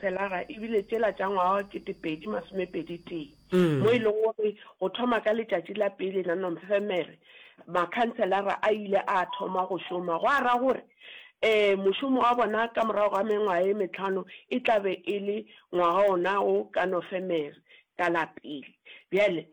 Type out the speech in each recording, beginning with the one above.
Felara e bile tšela tša ngwaga wa ketepedi masomepedi tee, mo e lego gore go thoma ka letšatši la pele la Nomfemere makhanselara a ile a thoma go šoma, gwa ra gore ee mošomo wa bona ka morago ga mengwaga ye metlhano e tla be e le ngwaga wona wo ka Nofemere ka la pele. Bjale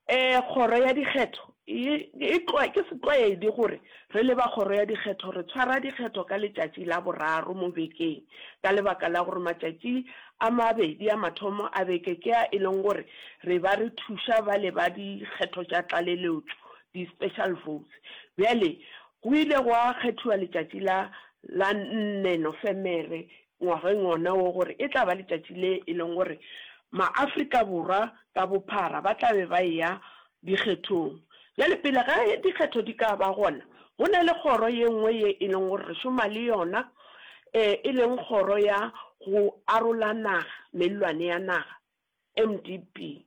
Ee, Kgoro ya Dikgetho e, e, ke setlwaedi gore re le ba Kgoro ya Dikgetho re tshwara dikgetho ka letšatši la boraro mo bekeng ka lebaka la gore matšatši a mabedi a mathomo a beke ke a e leng gore re ba re thuša bale ba dikgetho tša tlaleletšo, di-special votes. Bjale go ile gwa kgethiwa letšatši la la nne Nofemere ngwageng wona wo gore e tla ba letšatši le e leng gore maAfrika Borwa ka bophara ba tla be ba eya dikgethong. Bjale pele ga dikgetho di ka ba gona go na le kgoro ye nngwe ye e leng gore re šoma le yona e leng kgoro ya go arola naga, mellwane ya naga, MDP.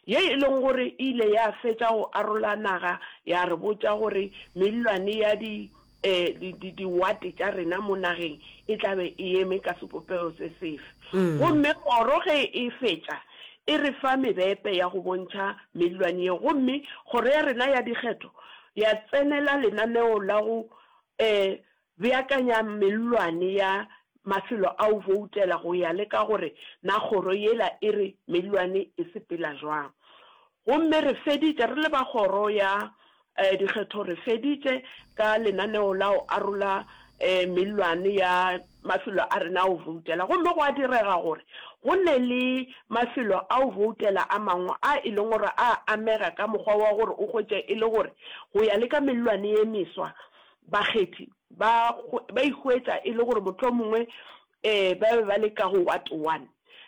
ye e lego gore e ile ya fetša go arola naga, ya re botša gore mellwane ya di, di, di, diwate tša rena mo nageng e tla be e eme ka sebopego se sefe. Gomme kgoro ge e fetša e re fa mebepe ya go bontšha mellwane yeo, gomme kgoro ya rena ya dikgetho ya tsenela lenaneo la go, Beakanya mellwane ya mafelo a o boutela go ya le ka gore na kgoro yela e re mellwane e sepela jwang. Gomme re feditše, re le ba kgoro ya dikgetho re feditše ka lenaneo la go arola mellwane ya mafelo a rena a go boutela. Gomme gwa direga gore go ne le mafelo a go boutela a mangwe a e leng gore a amega ka mokgwa wa gore o hwetše e le gore go ya le ka mellwane ye meswa Bakgethi ba ba ihwetša e le gore mohlomongwe ba be ba le ka go wat one.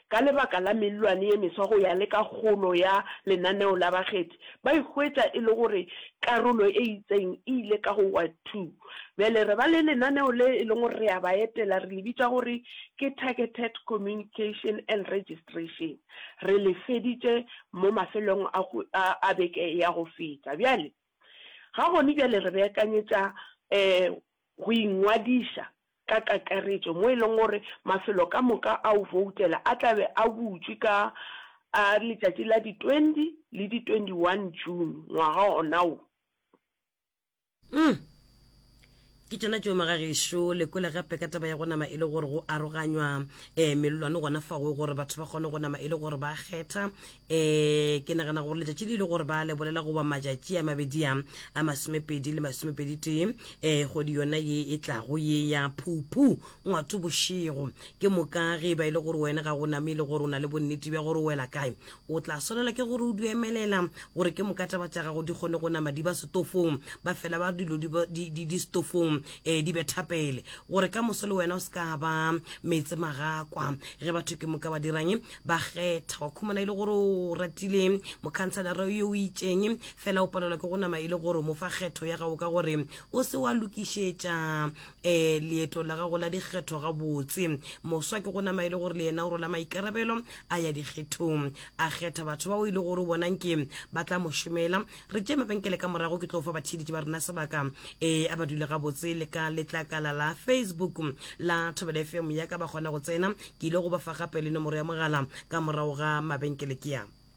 Ka lebaka la mellwane ye meswa go ya le ka kgolo ya lenaneo la bakgethi, ba ihwetša e le gore karolo e itseng e ile ka go wat two. Bjale re ba le lenaneo le e leng gore re a ba etela, re le bitša gore ke Targeted Communication and Registration. Re le feditše mo mafelong a beke ya go feta. Bjale. Ga gone bjale re beakanyetša um go ingwadiša ka kakaretšo mo e leng gore mafelo ka moka a go voutela a tla be a butšwe ka a letšatši la di 20 le di 21 June ngwaga ona wo. Ke tšona tšeo magagešo lekola gape ka taba ya go nama e le gore go aroganywa um eh, melolwane gona fago gore batho ba kgone go nama e le gore ba kgetha um ke nagana gore letšatši le ile gore ba le bolela goba matšatši a mabedi a a masomepedi le masomepedi tee um eh, kgwedi yona ye e tlago ye ya phuphu ngwato bošego ke moka ge e ba e le gore wena ga go name e le gore o na le bonnete bja gore o wela kae O tla swanela ke gore o di emelela gore ke moka taba tša gago di kgone go nama di ba setofong, ba fela ba dilo di ba- di- di- di setofong, eh, di be thapele, gore ka moso le wena o se ka ba meetse magakwa. Ge batho ke moka ba dirang, ba kgetha. Wa khumana e le gore o ratile mokhanselara yo o itšeng, fela o palelwa ke go nama e le gore o mo fa kgetho ya gago ka gore o se wa lokišetša Ee, leeto la gago la dikgetho gabotse. Moswa ke go nama e le gore le yena o rwala maikarabelo a ya dikgethong. A kgetha batho bao e le gore o bona nke ba tla mo šomela. Re tšee mabenkele ka morago, ke tlo fa batheeletši ba rena sebaka. Ee, a ba dule gabotse le ka letlakala la Facebook la Thobela FM ya ka ba kgona go tsena. Ke ile go ba fa gape le nomoro ya mogala ka morago ga mabenkele. Ke a.